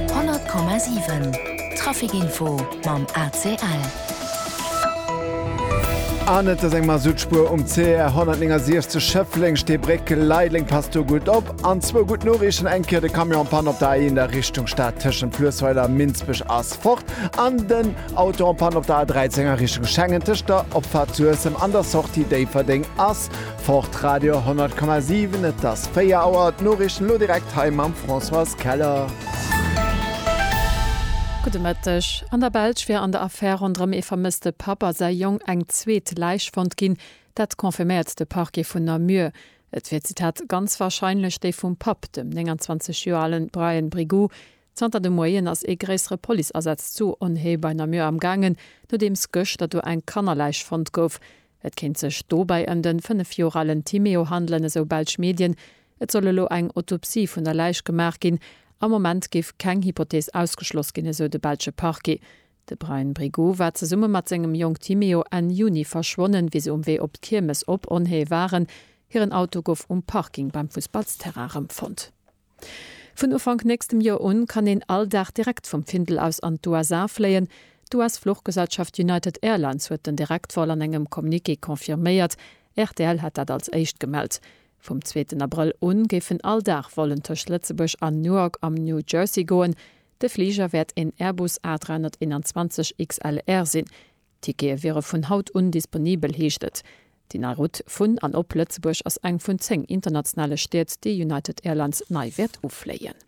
100,7 Traficinfo mam ACL. An et ass eng Masuttspuer um CR 169 Schëffleng, Steebréck, Leideleng. Passt do gutt op. An zwou gutt Noriichten, eng Kéier de Camion en Panne op der A1 a Richtung Stad tëschent Fluessweiler a Minsbech ass fort an den Auto en Panne op der A13 a Richtung Schengen tëscht der Opfahrt Suessem an der Sortie Déifferdeng ass Fort Radio 100,7, et ass 4 Auer, d'Noriichten elo direkt hei mam Françoise Keller. Gudde Mëtteg. An der Belsch wier an der Affär ronderëm ee vermësste Papp a säi Jong eng zweet Läich fonnt ginn. Dat confirméiert de Parquet vun Namur. Et wier, Zitat, ganz warscheinlech déi vum Papp, dem 29 Joer ale Brian Brigoux. Zanter de Moien ass ee gréissere Policeasaz zu Onhé bei Namur amgaangen, nodeems gëschter do eng Kannerläich fonnt gouf. Et kéint sech dobäi ëm den 5 Joer alen Timéo handelen, esou belsch Medien. Et soll elo eng Autopsie vun der Läich gemaach ginn. Am Moment géif keng Hypothees ausgeschloss ginn, esou de belsche Parquet. De Bryan Brigoux war zesumme mat sengem Jong Timéo Enn Juni verschwonnen, wéi se um Wee op d'Kiermes op Onhée waren. Hiren Auto gouf um Parking beim Fussballsterrain erëmfonnt. Vun Ufank nächstem Joer un kann een all Dag direkt vum Findel aus an d'USA fléien. D'US-Fluchgesellschaft United Airlines huet den Direktvol an engem Communiqué confirméiert. Rtl hat dat als éischt gemellt. Vum zweeten Abrëll u géifen all Dag Vollen tëscht Lëtzebuerg an Newark am New Jersey goen. De Fliger wäert een Airbus A321 XLR sinn. D'Tickete wiere vun haut un disponibel, heescht et. Déi nei Rout vun an op Lëtzebuerg ass eng vun 10 internationale Stied, déi United Airlines nei wäert ufléien.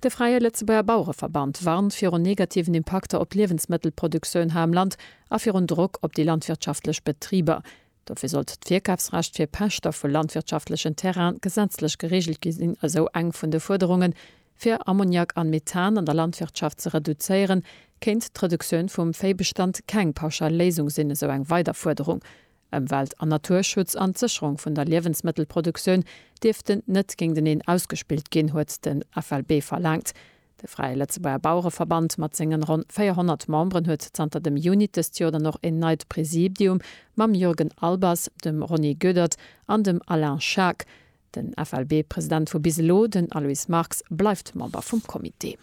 De Fräie Lëtzebuerger Bauereverband warnt virun negativen Impakter op d'Liewensmëttelproduktioun hei am Land a virun Drock op déi landwirtschaftlech Betriber. Dofir sollt d'Virkafsrecht fir Pächter vu landwirtschaftlechen Terraine gesetzlech gereegelt gi sinn, esou eng vun de Fuerderungen. Fir Ammoniak an Methan an der Landwirtschaft ze reduzéieren, kéint d'Reduktioun vum Véibestand keng pauschal Léisung sinn, esou eng weider Fuerderung. Ëmwelt an Naturschutz an d'Sécherung vun der Liewensmëttelproduktioun dierften net géinteneen ausgespillt ginn, huet den FLB verlaangt. De Fräie Lëtzebuerger Bauereverband mat sengen ronn 400 Memberen huet zanter dem Junit dëst Joer dann och een neit Präsidium mam Jürgen Albers, dem Ronny Goedert an dem Alain Schaack. Den FLB-President vu bis elo, den Aloyse Marx, bleift Member vum Comité.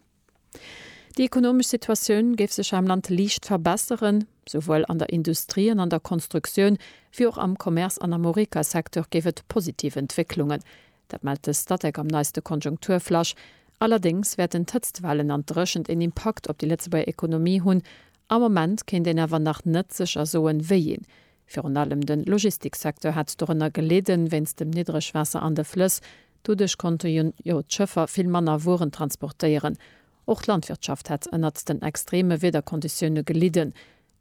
Déi ekonomesch Situatioun géif sech am Land liicht verbesseren. Souwuel an der Industrie an an der Konstruktioun, wéi och am Commerce an am Horeca-Secteur géif et positiv Entwécklungen Dat mellt de Statec am neiste Konjunkturflash. Allerdéngs wäerten d'Hëtztwellen an d'Dréchent een Impakt op déi Lëtzebuerger Ekonomie hunn. Am Moment kéint een awer nach net sécher soen, wéi een. Virun allem de Logistiksecteur hätt dorënner gelidden, wéinst dem Niddregwaasser an de Flëss. Doduerch konnte jo d'Schëffer vill manner Wueren transportéieren. Och d'Landwirtschaft hätt ënnert den extreeme Wiederkonditioune gelidden.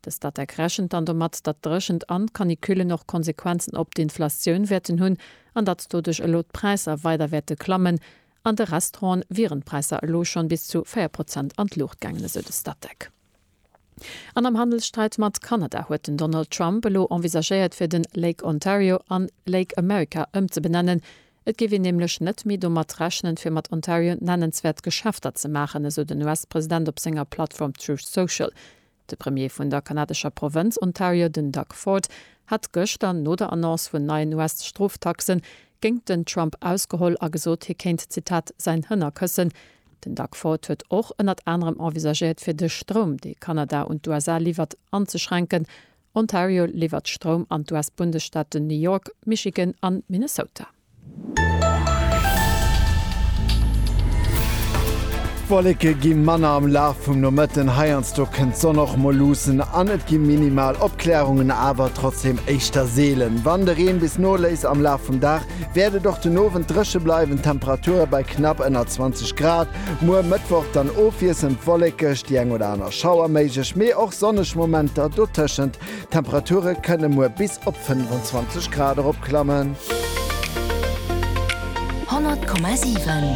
De Statec rechent dann domat, datt d'Dréchent an d'Canicullen och Konsequenzen op d'Inflation wäerten hunn an datt doduerch elo d'Präisser weider wäerte klammen. An de Restauranten wieren d'Präisser elo schonn bis zu 4 Prozent an d'Luucht gaangen, esou de Statec. An am Handelssträit mat Kanada huet den Donald Trump elo envisagéiert fir den Lake Ontario an Lake America ëmzebenennen. Et géif een nämlech net méi domat rechnen, fir mat Ontario nennenswäert Geschäfter ze maachen, esou den US-President op senger Plattform Truth Social. De Premier vun der kanadescher Provënz Ontario, den Doug Ford, hat gëschter no der Annonce vun neien US-Stroftaxe géingt den Trump ausgeholl a gesot, hie kéint, Zitat, säin Hënner këssen. Den Doug Ford huet och ënnert anerem envisagéiert, fir de Stroum, dee Kanada un d'USA liwwert, anzeschränken. Ontario liwwert Stroum an d'US-Bundesstaaten New York, Michigan an Minnesota. D'Wolleke gi manner am Laf vum Nomëtten, heiansdo kënnt d'Sonn och mol luussen an et gi minimal Opklärungen, awer trotzdeem éischter seelen. Wann de Reen bis noléisst am Laf vum Dag, wäert et och den Owend dréche bleiwen, d'Temperature bei knapp ënner 20 Grad. Muer Mëttwoch dann ofwiesselnd wollekeg, déi eng oder aner Schauer méiglech, mee och sonneg Momenter dotëschent. D'Temperature kënne muer bis op 25 Grad erop klammen. 100,7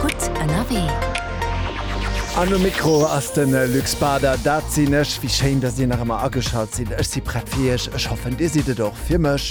gutt ënnerwee. An um Mikro ass de Luc Bader, dat sinn ech. Wéi schéin, datt dir nach ëmmer ageschalt sidd. Ech si prett fir iech. Ech hoffen, dir sidd et och fir mech.